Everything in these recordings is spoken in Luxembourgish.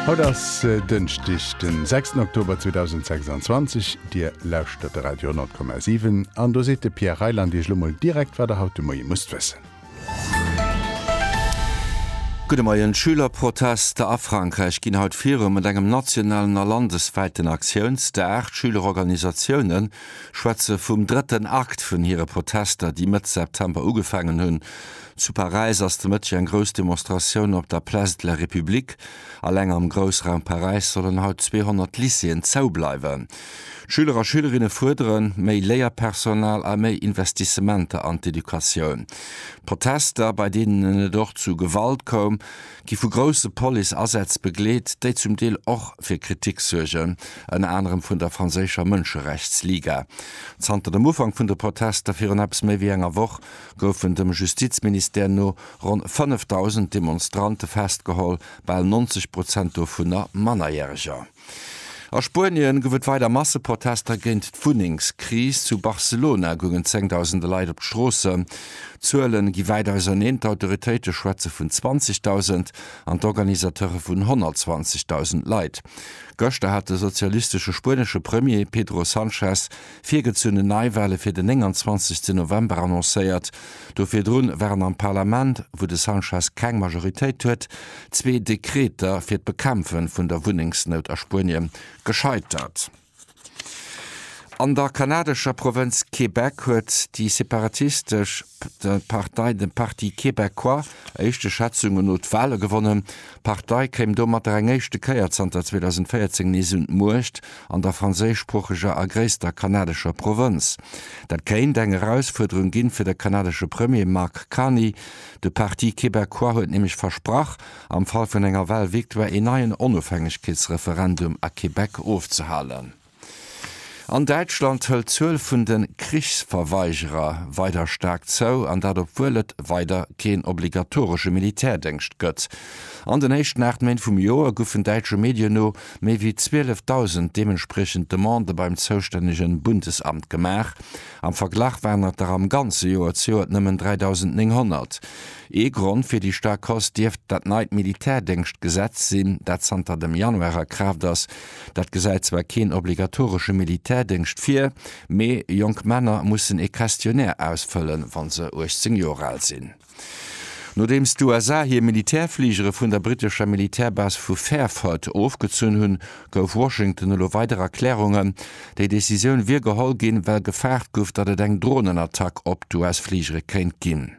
Haut ass Dënschdeg den 6 Oktober 2026, Dir lauschtert de Radio 10,7 an do seet de Pierre Reyland Iech lo mol direkt wat der haut de Moie musst wëssen. Gudde Moien, Schülerprotester a Frankräich ginn haut virun, mat engem nationalen a landeswäiten Aktiounsdag. D'Schülerorganisatioune schwätze vum drëtten Akt vun hire Protester, déi Mëtt September ugefaangen hunn. Zu Paräis ass de Mëtteg eng grouss Demonstratioun op der Place de la République. Alleng am Groussraum Paräis sollen haut 200 Lycéeën zou bleiwen. D'Schüler a Schülerinne fuerderen méi Léierpersonal a méi Investissementer an d'Educatioun. D'Protester, bei deenen et och zu Gewalt koum, gi vu grousse Police-Asätz begleet, déi zum Deel och fir Kritik suergen, ënner anerem vun der franséischer Mënscherechtsliga. Zanter dem Ufank vun de Protester virun eppes méi wéi enger Woch goufen dem Justizministère no ronn 5.000 Demonstrante festgeholl, bal 90 Prozent dovunner Mannerjäreger. A Spuenie gouf et weider Masseprotester géint d'Wunnengskris. Zu Barcelona goungen zéngdausende Leit op d'Stroossen. D'Zuele gi wäit auserneen, d'Autoritéite schwätze vun 20.000 an d'Organisateure vun 120.000 Leit. Gëschter hat de sozialistesche spuenesche Premier Pedro Sanchez virgezunnen Neiwale fir den 29 November annoncéiert. Do virdru waren am Parlament, wou de Sanchez keng Majoritéit huet, zwee Dekreter fir d'Bekämpfe vun der Wunnengsnout a Spuenie gescheitert. An der kanadescher Provënz Québec huet déi separatistesch Partei, de Parti québécois, éischte Schätzunge no d'Wale gewonnen, D'Partei kéim domatter eng éischte Kéier zanter 2014 nees un d'Muecht an der franséischsproocheger a gréisster kanadescher Provënz. Dat kéint eng Erausfuerderung ginn fir de kanadesche Premier Mark Carney. De Parti québécois huet nämlech versprach, am Fall vun enger Wahlvictoire een neien Onofhängegkeetsreferendum a Québec ofzehalen. An Däitschland hëlt d'Zuel vun de Krichsverweigerer weider staark zou, an dat obwuel et weider keen obligatoresche Militärdéngscht gëtt. An den éischten 8 Méint vum Joer goufen däitsche Medien no méi wéi 12.000 deementspriechend Demandë beim zoustännege Bundesamt gemaach. Am Verglach waren et der am ganze Joer zejoert nëmmen 3.900. Ee Grond fir déi staark Hausse dierft dat neit Militärdéngschtgesetz sinn, dat zanter dem Januar a Kraaft ass. Dat gesäit zwar keen obligatoresche Militärdéngscht vir, mee jonk Männer mussen ee Questionnaire ausfëllen, wa se 18 Joer al sinn. Nodeems d'USA hir Militärfligere vun der brittescher Militärbase vu Fairford ofgezunn hunn, gouf Washington elo weider Erklärungen. Déi Decisioun wier geholl ginn, well gefaart gouf, datt et eng Dronenattack op d'US-Fligere kéint ginn.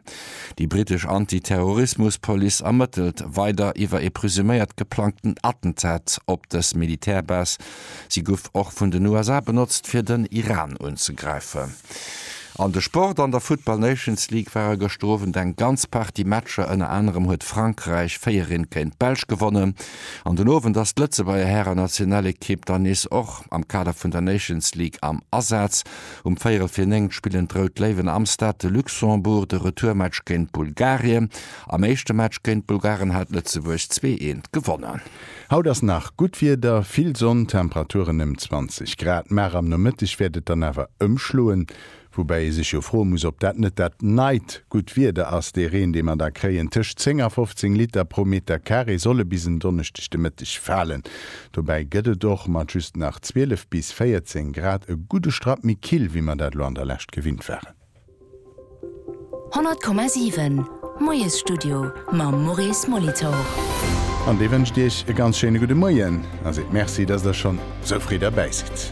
Déi brittesch Anti-Terrorismus-Police ermëttelt weider iwwer ee presuméiert geplangten Attentat op dës Militärbase. Si guff och vun den USA benotzt fir den Iran unzegräifen. An de Sport, An der Football Nations League ware gëschter Owend eng ganz Partie Matcher, ënner anerem huet Frankräich 4 Rinn géint d'Belsch gewonnen. An den Owend ass d'Lëtzebuerger Hären-Nationalekipp dann nees och am Kader vun der Nations League am Asaz. Um véierel fir néngt spillen d'Rout Léiwen am Stade de Luxembourg de Retourmatch géint Bulgarien. Am éischte Match géint d'Bulgaren hat Lëtzebuerg zwee eent gewonnen. Haut ass nach gutt Wieder, vill Sonn, Temperaturen ëm 20 Grad, mar am Nomëtteg wäert et dann awer ëmschloen. Woubäi ee sech jo froe muss, ob dat net dat neit gutt Wieder ass. Dee Reen, dee mer da kréien, tëscht 10 a 15 Liter pro Meter Carré, solle bis en Donneschdeg de Mëtteg falen. Dobäi gëtt et och mat just nach 12 bis 14 Grad e gudde Strapp méi kill, wéi mer dat elo an der Lescht gewinnt waren. 100,7, Moiesstudio mam Maurice Molitor. An dee wënscht Iech e ganz schéine gudde Moien a seet Merci, dass Der schonn esou fréi derbäi sidd.